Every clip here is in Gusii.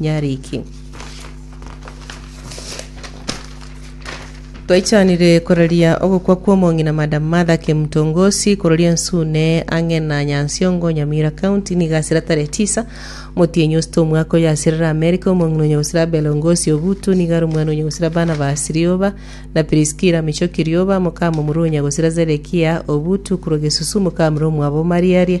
Nyariki. Twaichanire koraria ogokwa kw'omong'ina Madam Martha Kemtongosi kororia Ensune ang'e na Nyansiongo, Nyamira County, nigo asira tarehe tisa motienyi osita omwaka oyo asirire Amerika. Omong'ina onye gosira Abel Ngosi Obutu nigo are omwana onye gosira Barnabas Rioba na Priskila Michoki Rioba, mokamomura onya gosira Zedekia Obutu korwa Gesusu, mokamura omwabo Mariaria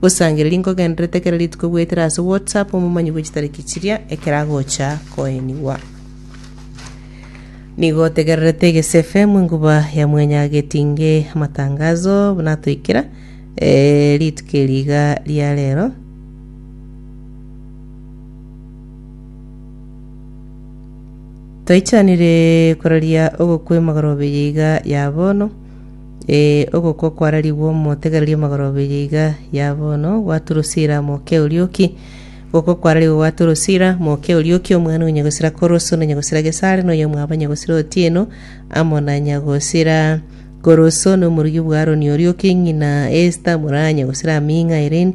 Gosangereria nkogenderete kera rituko goetera ase WhatsApp omomanyi bwe chitariki chiria ekero agocha koenigwa. Nigo otegererete Egese FM enkuba ya mwenya getinge amatangazo natoikera eh, rituko eri iga ria rero. Toichanire kororia ogokwema gorobeye iga ya bono Ee, ogokwa kwararigwe omotegereria magoro abere iga ya bono gwa Turusila mokia orioki. Ogokwa kwararigwe gwa Turusila mokia orioki, omwana o nyagosira Koroso na nyagosira Gesare, na oyomwabo nyagosira Otieno, amo na nyagosira Koroso, na omorugi bwa Aroni orioki, ng'ina Esta, mura nyagosira Aming'a, Irene,